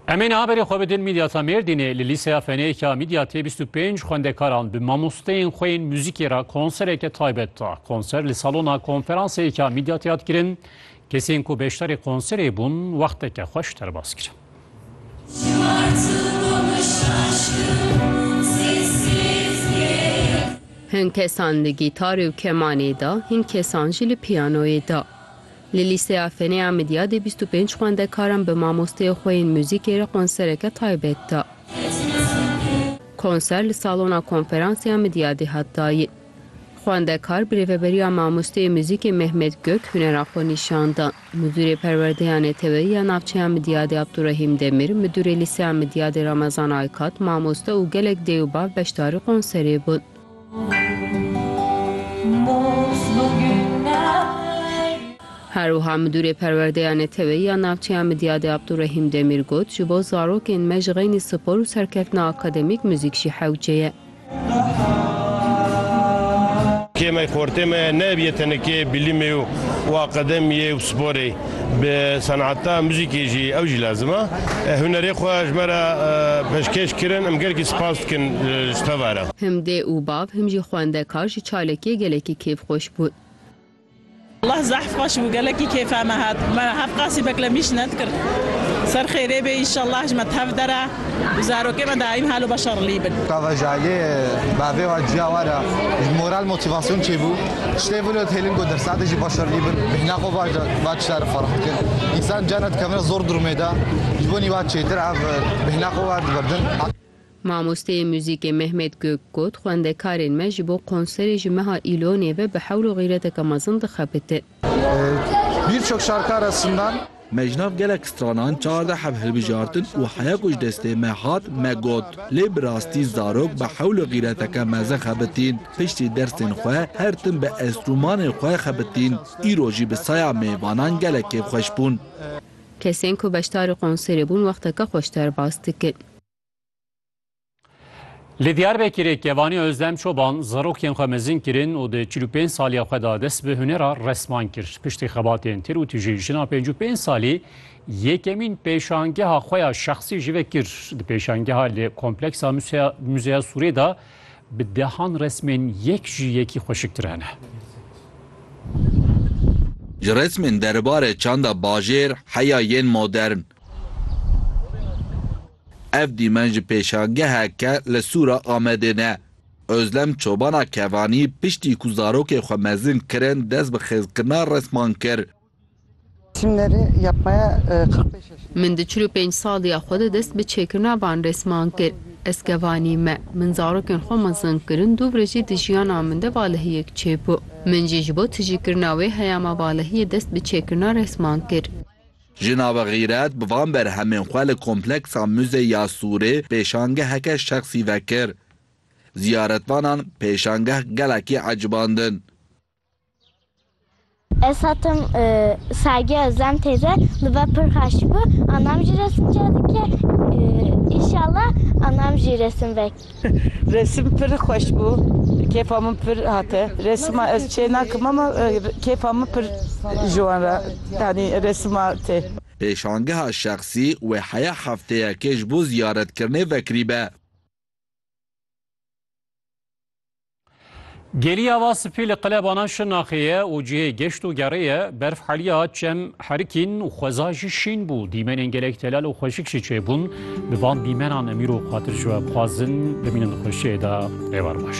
Em ê niha berê xwe bidin Mîdyata Mêrdînê li Lîseya Fenêka Mîdyatê bîst û pênc xwendekaran bi mamosteyên xwe yên muzîkê re konsereke taybet da. Konser li salona konferanseyêka Mîdyatê hat kirin. Kesên ku beşdarê konserê bûn wexteke xweş derbas kirin. Hin kesan li gîtarê û kemanê da, hin kesan jî li piyanoyê da. Li Lîseya Fenê Amidiyê dê bîst û pênc xwendekaran bi mamosteyê xwe yên muzîkê re konsereke taybet da. Konser li Salona Konferansê Amidiyê dê hat dayîn. Xwendekar bi rêveberiya mamosteyê muzîkê Mehmet Gök hunera xwe nîşan dan. Midûrê Perwerdeya Neteweyî ya Navçeya Amidiyê dê Abdurehîm Demir, Midûrê Lîseya Amidiyê dê Ramazan Aykat, mamoste û gelek dê û bav beşdarî konserê bûn. Her wiha Midûrê Perwerdeya Neteweyî ya Navçeya Midyadê Abdurehîm Demîr got, Ji bo zarokên me ji xeynî spor û serkeftina akademîk muzîk jî hewce ye. Kêmeyê xortê me nebiye tenekê bilîmê û akademiyê û sporê. Bi senata muzîkê jî ew jî lazim e. Hunerê xwe ji me re pêşkêş kirin. Em gelekî spas dikin ji te ve re. Him dê û bav him jî xwendekar ji çalekê gelekî kêfxweş bûn. Leh zehf xweş bû gelekî kêfa me hat. Me hevqasî beklemîş nedikir. Ser xêrê bê înşellah ji me tev dere. Bi zarokê me daîm hal û beşa rilî bin. Kavajali bavê wan ciya wan e, ji moral motîvasyon çêbû. Tiştê vin û hêlin ku dersa de jî beşa rilî bin. Bêhna xwe baş de va tişta re ferq dikin. Însan carna dikevine zor durmê de, ji bo nîva çêtir ev bêhna xwe wa diberdin. Mamosteyê muzîkê Mehmet Gök got, Xwendekarên me ji bo konserê ji meha Îlonê ve bi hewl û xîreteke mezin dixebitin. Birçok şarkı arasından. Me ji nav gelek stranan çardeh hev hilbijartin û heya ku ji destê me hat me got. Lê bi rastî zarok bi hewl û xîreteke mezin xebitîn. Piştî dersên xwe her tim bi enstrûmanên xwe xebitîn. Îro jî bi saya mêvanan gelek kêfxweş bûn. Kesên ku beşdarî konserê bûn wexteke xweş derbas dikin. Li Diyarbekirê Kevanî Ozlem Çoban zarokên xwe mezin kirin û di çil û pênc saliya xwe de dest bi hunera resman kir. Piştî xebatên tir û tije jina pênc û pênc salî yekemîn pêşangeha xwe ya şexsî ji ve kir. Di pêşangeha li kompleksa Muzeya Sûrê de bi dehan resmên yek ji yekî xweşiktir hene. Ji resmên deribare çanda bajêr heya yên modern, Ev dîmen ji pêşangeheke li Sûra Amedê ne. Ozlem çobana Kevanî piştî ku zarokên xwe mezin kirin dest bi xêzkirina resman kir. Min di çil û pênc saliya xwe de dest bi çêkirina van resman kir. Ez Kevanî me. Min zarokên xwe mezin kirin du vir jî di jiyana min de valehiyek çêbû. Min jî ji bo tijîkirina wê heyama valehiyê dest bi çêkirina resman kir. Ji nava xîret bi van berhemên xwe li kompleksa Muze ya Sûrê pêşangeheke şexsî vekir. Ziyaretvanan pêşangeh gelekî ecibandin. Ez hatim Sergi Özlem teyze li ve pir xweş bû. Anam jî resim çêdike. Înşallah anam jî resim veke. Resim pir xweş bû. Kêfa min pir hate. Resima ez çê nakim ama kêfa min pir ji wan re yanî resima tê. Pêşangeha şexsî wê heya hefteyekê ji bo ziyaretkirinê vekirîbe. Gelî ava spî li qelebanan Şirnaxê ye û cihê geşt û gerê ye. Berf heliya, çem herikîn û xweza jî şîn bû. Dîmenên gelek telal û xweşik jî çêbûn. Bi van dîmenan Emîr û Xatir ji we bixwazin bimînin di xweşiyê de. Êvar baş.